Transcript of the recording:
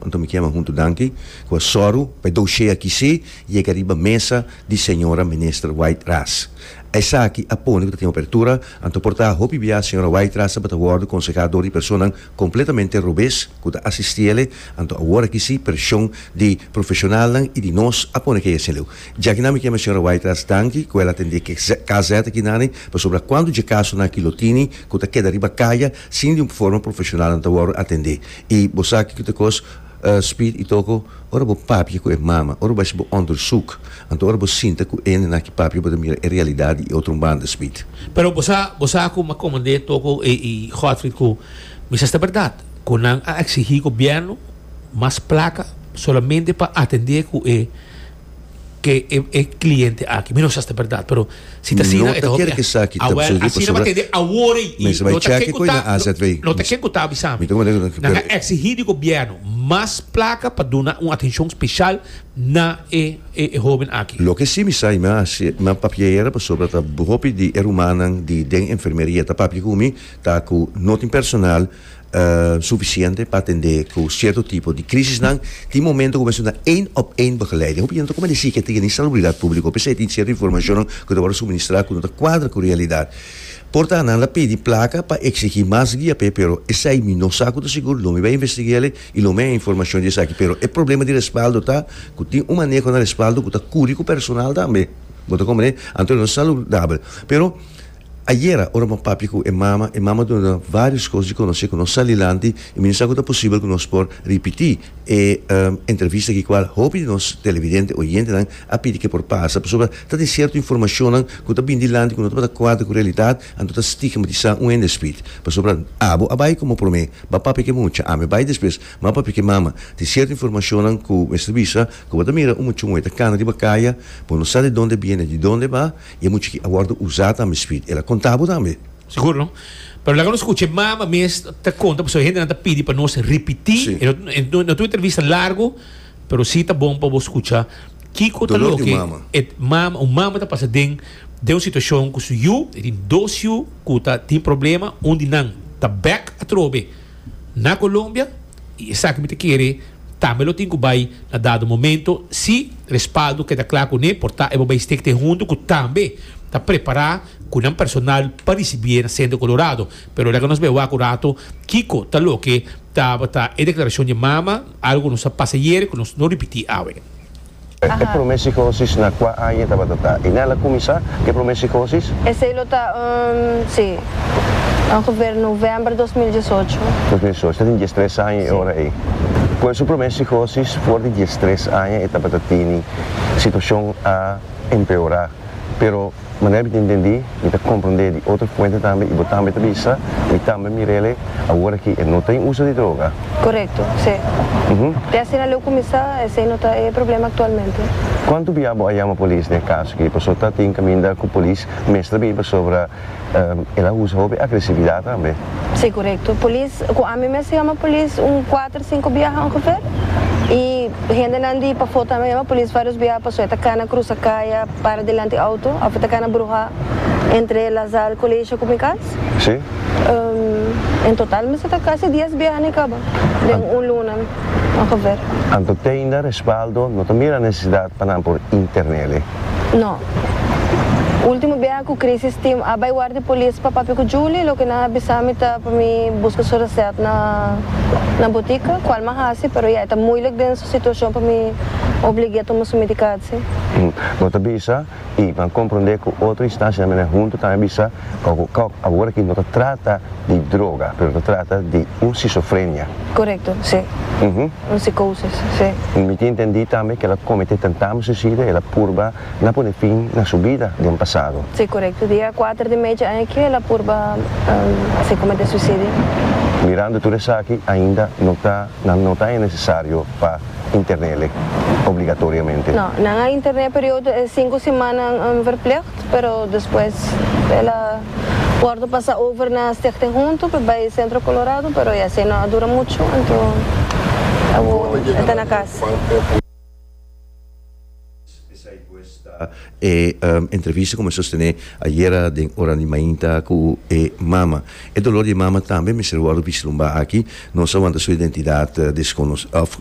Anto mi kema huntu danki ku a sòru pa e doushé akí sí yega riba mesa di señora Minister White-Ras. Esaki a pone ku ta tin opertura, anto por ta hopi bia señora White-Ras tabata wòrdu konsehá dor di personan kompletamente robes ku ta asistiele, anto awor akí sí pershon di profeshonalnan i di nos a pone kei asin leu. Dja kinan mi kema señora White-Ras danki ku el a atendé KZ akinan pasobra kuantu dje kasonan akí lo tini ku ta keda riba kaya, Sin di un forma profesional nan ta wòrdu atendé i bo sa kiko ta kos spit i toko ora bo papia ku e mama ora bo hasi bo ondersoek anto ora bo sinta ku e nena ki papia bo ta mira e realidat di e otro un banda spit. Pero bo sa bo sa ku Makomandé toko e i Godfrid ku mester ta bèrdat ku nan a eksigí gobièrnu mas plaka solamente pa atendé ku e ke e e kliente aki. Mi no sa si ta bèrdat, pero si ta asina, e ta hopi aki. Awèl, asina bo a tende awor ei. I lo ta ken ku ta, lo ta ken ku ta avisa mi. Nan a eksihí di gobièrnu mas plaka pa duna un atenshon speshal na e e hóben aki. Loke si mi sa i mi a hasi, mi a papia era pasobra ta hopi di e rumannan di den enfermeria ta papia ku mi ta ku no tin personal, sufisiente pa atendé ku sierto tipo di krisisnan, tin momento ku mester na één òp één begeleiding. Hopi hende ta kome desi ke tin yende salubridat públiko p'esei tin sierto informashonnan ku ta wòrdu suministrá ku no ta kuadra ku realidat. Por ta nan a pidi plaka pa eksigí mas guia p'e pero esei mi no sa ku ta sigur, lo mi bai investig'é alí i lo mi a haya informashon di esaki. Pero e problema di respaldo ta ku tin un maneho na respaldo ku ta kuri ku personal tambe. Bo ta komprendé? Anto no ta saludabel. Pero. Ayera, ora bo papia ku e mama, e mama a duna nan vários kos di konosé ku nos sali lanti i mi no sa ku ta posibel ku nos por ripití e entrevista ki kual hopi di nos televidente, oyentenan, a pidi ku e por pasa. Pasobra ta tin sierto informashonnan ku ta bini di lanti ku no tabata kuadra ku realidat, anto ta stigmatisá un hende Speed. Pasobra abo a bai komo promé, ba papia ku e mucha, ami a bai despues, mi a papia ku e mama. Tin sierto informashonnan ku mester bisa, ku bo ta mira un mucha moe ta kana riba kaya, bo no sa di donde e biene, di donde e ba, I e muchachi a wòrdu usá tambe, Speed. El a konta bo tambe? Sigur no. Pero laga nos skucha e mama mes ta konta pasobra hendenan ta pidi pa nos ripití. Si. E no ta un entrevista largu, pero sí ta bon pa bo skucha kiko ta loke. Dolor di un mama. E mama, un mama ta pasa den den un situashon ku su yu, e tin dos yu ku ta tin problema, un di nan ta bèk atrobe. na Colombia y esaki mi ta kere tambe lo tin cu bay na dado momento si respaldo keda cla cune por ta e bo bay stik te hunto cu tambe ta prepara cu nan personal pa ricibi'e na Centro Colorado pero laga nos bay wak un rato kico ta loke tabata e declaracion dje mama algo nos a pasa yere cu nos no ripiti awe. E prome sikosis na kua aña tabata ta i nel a kuminsá ku e prome sikosis? Esei lo ta un si, ongeveer novèmber dos mil dies ocho. Dos mil dies ocho, ta tin dies tres aña e ora ei. Ku e su prome sikosis for di dies tres aña e tabata tini situashon a empeorá, pero. Manera mi ta intendi, mi ta comprende di otro fuente tambe y bo tambe ta bisa, mi tambe mirele, awor aki e no ta en uso di droga. Correcto, si. Te asina leu cuminsa, esey no ta e problema actualmente. Cuanto bia bo a yama polis n'e caso aki? Paso ta tin caminda cu polis mester bini pasobra el a usa hopi agresividad tambe. Si, correcto. Polis, cu ami mes a yama polis un cuater, cinco biaha ongeveer y hendenan di pafo tambe a yama polis varios biaha paso e ta cana cruza caya. Para delanti auto of ta cana bruha entre La Salle Colegio cu mi cas? Sí. En total mester ta casi dies biaha na e caba den un luna ongeveer. Anto teinda respaldo no ta mira necesidad pa nan por internele? No. Ultimo biaha cu crisis team a bay war di polis pa papia cu Julie loke nan a bisa mi ta pa mi busca su recet na botica cual mi a haci pero ya e ta moeilijk den su situacion pa mi obligue a tuma su medicatie. Sim. Bo ta bisa y ban compronde cu otro instancia mene hunto tambe bisa kau cu kau awor aki no ta trata di droga pero ta trata di un schizofrenia. Correcto, si. Un psicosis, si. Mi tin intendi tambe cu el a comete tentamo suicida y el a purba na pone fin na su bida den pasado. Si, correcto. Dia cuater di mecha aña aki el a purba si comete suicidio. Mirando tur esaki ainda no ta. Nan no ta e necesario pa internele obligatoriamente. No, nan a interne periodo e sinku semana en verplicht, pero despues el a wordo pasa over na Stichting Huntu pe bai Centro Colorado, pero ya esei no a dura muchu, anto e ta na cas. Esei pues ta e entrevista ku mi a sostené ayera den ora di mainta ku e mama. E dolor di e mama tambe mester wòrdu bislumba aki. Nos a wanta su identidat desconoci, òf,